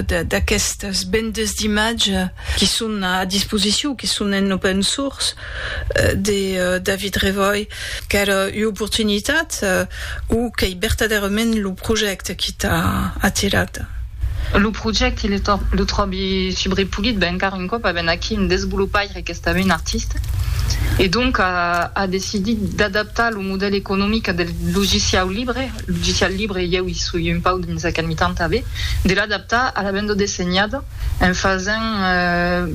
d'aquestas bendas d'imatge qui son a disposicion, qui son en open source, de David Revoy, qu'èra ua oportunitat o qu'ei vertadèrament lo projècte qui t'a atirat? Lo projècte lo tròbi subrepolit, ben encara un còp a ben aquí un desvolopaire qu'estaven artista e donc a decidit d'adaptar lo modèl economic del logiciau libre, Logicial libre, ieu i soi un pauc dins aquel mitan tanben, de l'adaptar a la banda dessenhada en fasent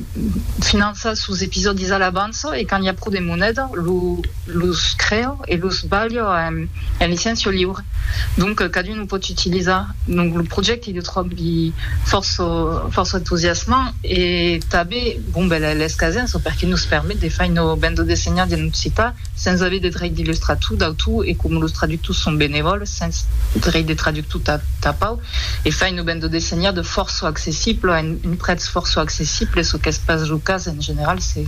finançar sos episòdis a l'avança e quand i a pro de moneda los crèo e los balho en licéncia liure. Donc cadun o pòt utilizar. Donc lo projècte lo tròbi fòrça entusiasmant e tanben bon ben l'escasença perque nos permet de fai una banda dessenhada en occitan sens aver de dreit d'illustrar tu dau tu e com los traductors son benevòls sens dreit de traductor ta ta pau e fain lo ben de dessenhar de fòrça accessible a un un prètz fòrça accessible çò qu'es pas lo cas en general se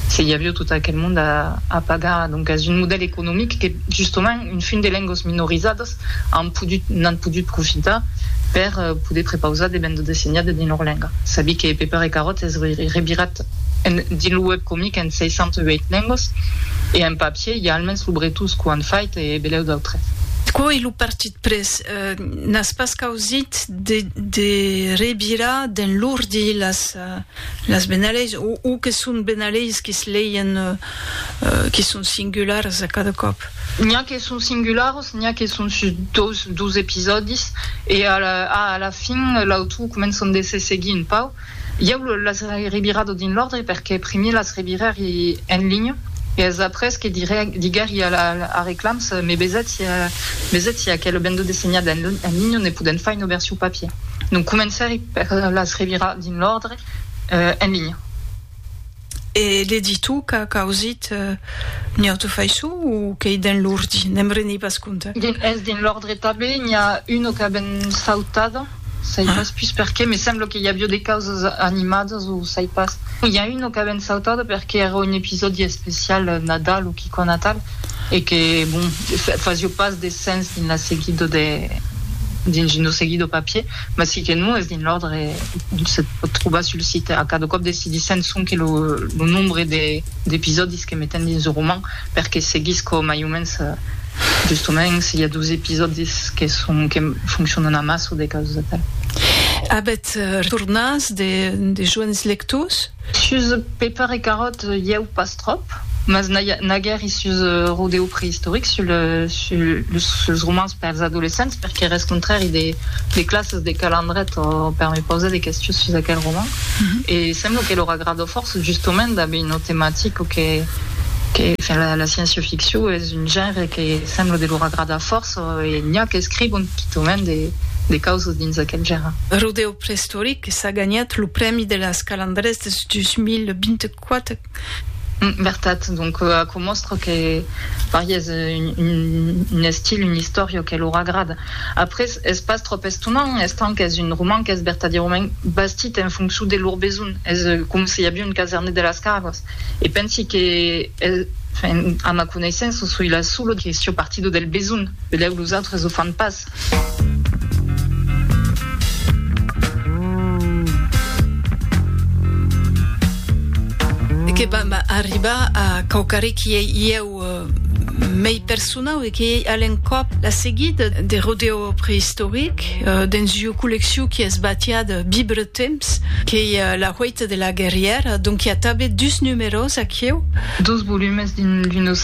se i avió tot aquel monde a a pagar doncas un modèl economic que justement un fin de lengas minorizadas an podut, n'an podut profitar per poder prepausar de banda dessenhada dins lor lenga. Sabi que Peper e Carròt es revirat en, dins lo web comic en 608 lengas e en papier i a almens lo bretós qu'o an fait e belèu d'autres. Quò e lo Partit Press n'as pas causit de, de revirar dins l'ordi las, las benaleis o, o que son benaleis que's leien, qui son singulars a cada còp. N'i a que son singulars, n'i a que son sus dos, dos episòdis, e a la, a la fin, l'autor començan de se seguir un pauc. Ieu las revirado dins l'òrdre perque primier las revirèri en linha, e es après que dirè, diguèri a la, a Reclams, Me vesètz si, vesètz si aquel bendo dessenhat en, en linha ne podèm fai una version papier. Donc comencèri per las revirar dins l'òrdre, en linha. E le dis tu qu'a causit Nioto Faissou o qu'ei dens l'ordi? Ne'm rendi pas compte. Es dins l'ordre tanben, n'i a una qu'a ben sautada, sai pas pus perqué, me sembla que i avió de causas animadas o sai pas. I a una qu'a ben sautada perqué èra un episòdi especial Nadal o quicò natal e que bon, fasió pas de sens dins la seguida de dins lo seguit de papier. mas si que non es dins l'òrdre se pòt trobar sul site a cada còp decidissèm sonque lo lo nombre de d'episòdis que metem dins lo roman perque seguisco mai o mens justement se i a dos episòdis que son que foncionan amassa o de causas de tal. Avètz retornas de de joens lectors? Sus Peper e Carrot ieu pas tròp, mas naguèri sus Rodeo Preïstoric, suls romans pèrs adolescents, per qu'èr escontrèri de classes de calandret o per me pausar de questions sus aquel roman, e sembla que lor agrada fòrça, justement dab una tematica que, enfin, la sciencio-ficcion es un genre que sembla de lor agradar fòrça, e n'i a qu'escrivon quitament de causas dins aquel genre. Rodeo Preïstoric. que s'a ganhat lo prèmi de las Calandrés de 2024. Vertat, donc aquò mòstra que Paris es un estil, un istòria que lor agrada. Après, es pas tròp estonant, estant qu'es un roman qu'es vertadièrament bastit en foncion de lor besonh, es com si aviá un casernet de las Cargas. E pensi que, enfin, a ma coneissença, soi la sola que siò partida del besonh, benlèu los autres o fan pas. Que vam arribar a quauquarre qui ei ieu mei personau e qui ei a l'encòp la seguida de rodeo prehistoric dens ua collecciu qui es batiá de vibre temps, qu'ei La Hueita de la Guerrièra, donc i a tanben dus numeròs aquieu. Dos volumes d'una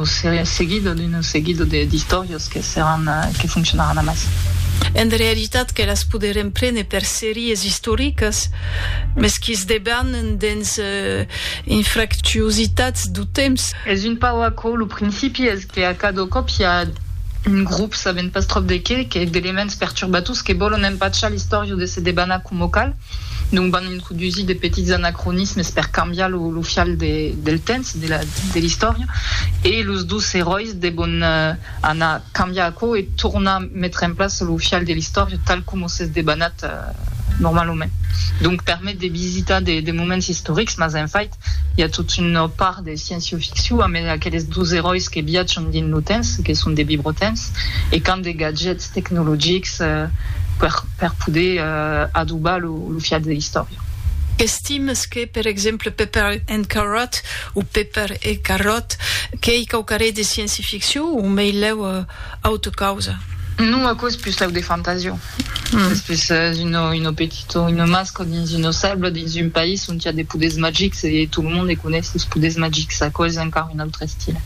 seria seguida, d'una seguida d'istòrias. Los que seràn, que foncionaràn amassa. En realitat que las poderem prene per series istoricas, mes que's debanen dens infractuositats dau temps. Es un pauc aquò, lo principi es que a cada còp i a un grop, sabent pas tròp de qué, que d'elements perturbators que vòlon empachar l'istòria de se debanar coma cal, donc van introdusir de petits anacronismes per cambiar lo fial del temps, de l'istòria, e los dos eròis, Nosaltres devon anar cambiar aquò e tornar metre en plaça lo fial de l'istòria tal coma s'es debanat normalament. Donc permet de visitar de moments istorics, mas en fait i a tot una part de sciencio-ficcion amb aqueles dos eròis que viatjan dins lo temps, que son de bibrotents e qu'an de gadgets tecnologics per poder adobar lo fial de l'istòria. Estimes que, per exemple, Pepper and Carrot o Pepper e Carròt, qu'ei quauquarrei de scienci-ficcion o meilèu auta causa? Non, aquò es puslèu de fantasia. Es pus una petita o una masca dins una selva, dins un país ont i a de poders magics e tot lo monde coneis los poders magics. Aquò es encara un autre estila,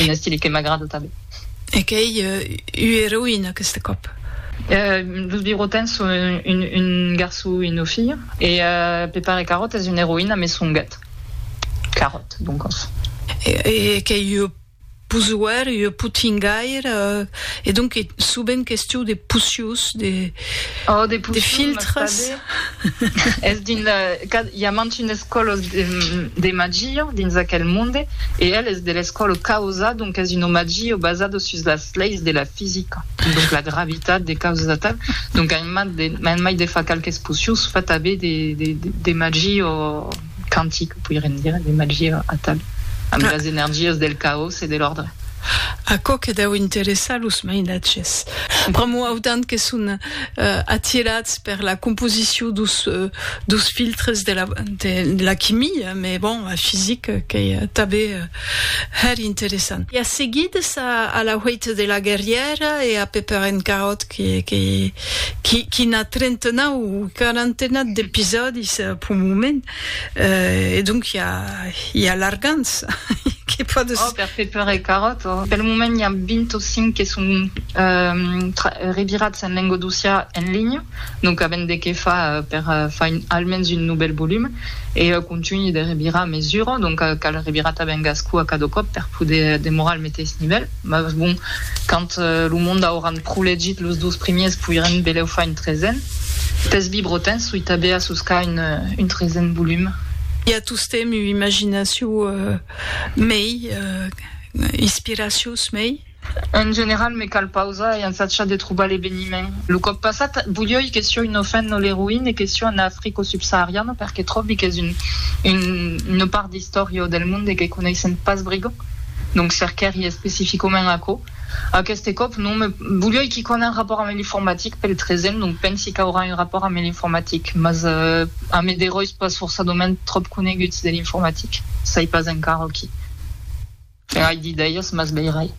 un estila que m'agrada tanben. E qu'ei ua eroïna aqueste còp? Los Virotins son un garçon e una filha e Pepper e Carròt es una eroïna, mai son gat. Claròt, doncas. E qu'ei ua posuèr, ua potingair, e donc ei subent questiu de poçius, de... Oh, de poçius, mas tanben... De filtres. Es dins la... Cad, i a mantes una escòla de, de magia dins aquel monde, e el es de l'escòla causa, donc es una magia basada sus las leis de la fisica, donc la gravitat, de causas atal, donc a en mai de far qualques poçius, fa tanben de, de, de magia... quantic, poiriam dire, de magia atal, amb las energias del caos e de l'òrdre. Aquò que deu interessar los mainatges, pr'amor autant que son atirats per la composicion dos filtres de la quimia, mès bon, la fisica qu'ei tanben hèr interessant. E a seguit, a la huèita de la guerrièra e a Pepper and Carrot que quina trentena o quarantena d'episòdis pel moment, e donc i a, i a largants que pòdes... Oh, per fer pèr e caròt, oh! Pel moment i a 20 o 5 que son revirats en lenga docià en linha, donc avèm de qué far per far almens un novèl volum, e eu contunhi de revirar a mesura, donc cal revirar tanben Gascú a cada còp per poder demorar al meteis nivèl. Mas bon, quand lo monde auran pro legit los dos primiers poirem beleu far un tresen. Pes bibrotins soi tabea sus ca un tresen volum. I a tostemp ua imaginacion mei, inspiracious mei. En general me cal pausar e ensachar de trobar l'eveniment. Lo còp passat volioi que sioi no fen no l'eroin e que sioi en Africo subsahariano perque tròbi qu'es una part d'istòria o del monde que coneissem pas brigo. Donc cerquèri especificoment aquò. Aqueste còp non, me bolhoi qui qu'a un rapòrt ame l'informatic pel tresen, donc pensi qu'aurà un rapòrt ame l'informatic, mas ame de ròis pas forçadament tròp coneguts de l'informatic. Sai pas encara qui. Ai d'idèias, mas veirai.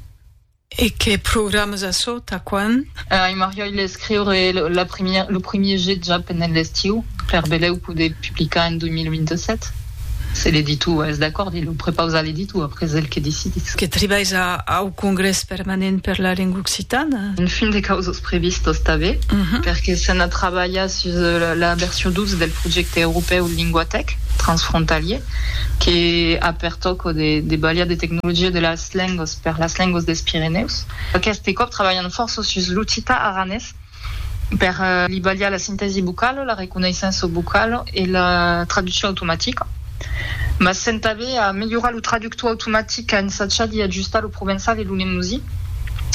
E que programas a çò, tà quan? Ai marriòi l'escriure lo primièr jet ja pendent l'estiu, per belèu poder publicar en 2027, se l'editor es d'acòrd, e lo prepaus a l'editor, après el que decidís. Que tribais au Congrès Permanent per la Lenga Occitana? En fin de causas previstas tanben, perque se n'a trabalhat sus la version 12 del projècte europèu Linguatèc transfrontalier, que a per tòca de balhar de tecnologia de la Lengos per las lengos des Pirenèus. Aqueste còp trabalhan fòrça sus l'occitan aranés per li balhar la sintèsi vocala, la reconeissença vocala e la traduccion automatica. Mas sèm tanben a melhorar lo traductor automatic, a ensachar d'i ajustar lo provençal e lo lemosí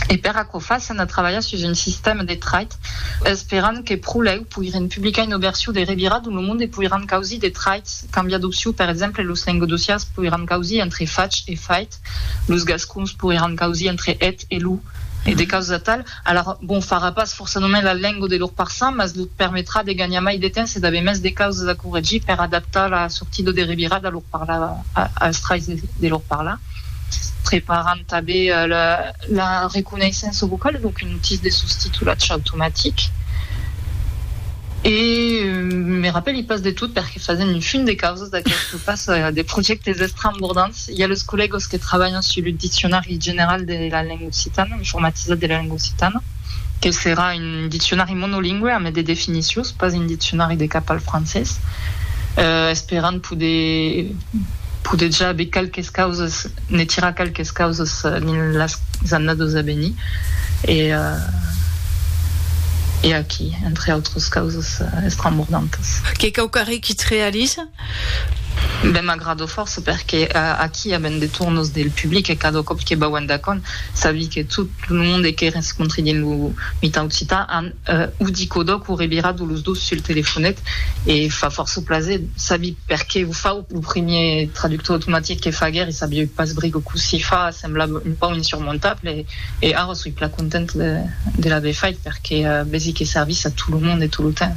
e per aquò fa sèm a trabalhar sus un sistèma de trait esperant que pro lèu poirem publicar una version de revirat dont lo monde poiràn causir de traits, cambiar d'opcion, per exemple, los lengodocians poiràn causir entre fach e fait, los gascons poiràn causir entre eth e lo, e de causas atau. Alara, bon, farà pas fòrça només la lenga de lor parçan, mas lor permetrà de ganhar mai de temps e d'aver mès de causas a corregir per adaptar la sortida de revirat a lor parla, als traits de lor parla, preparant tanben la. La reconeissença vocala es donc un outil de sostitulatge automatic e me rapèli pas de tot perque fasent un fin de causas d'aqueste pas de projèctes estrambordants. I a los collègas que trabalhan sus lo diccionari general de la lenga occitana, informatizat de la lenga occitana, que serà un diccionari monolingüe amé de definicions, pas un diccionari de cap al francés, esperant poder poder ja aver qualques causas. ne tira qualques causas dins las annadas a venir e e aquí entre autras causas estrambordantas. Qu'es quau qu'arré qui te realisa? Ben m'agrada fòrça perque aquí avèm de tornos del public e cada còp que vau endacònt sabi que tot lo monde que rescontri dins lo mitan occitan an o dit quodò qu'o revirat o los dos sul telefonet e fa fòrça plaser sabi perque o fau. Lo primièr traductor automatic que faguèri sabieu pas brigo cossí fa, semblava un pauc insurmontable e ara soi plan content de l'aver fait perque vesi que servís a tot lo monde e tot lo temps.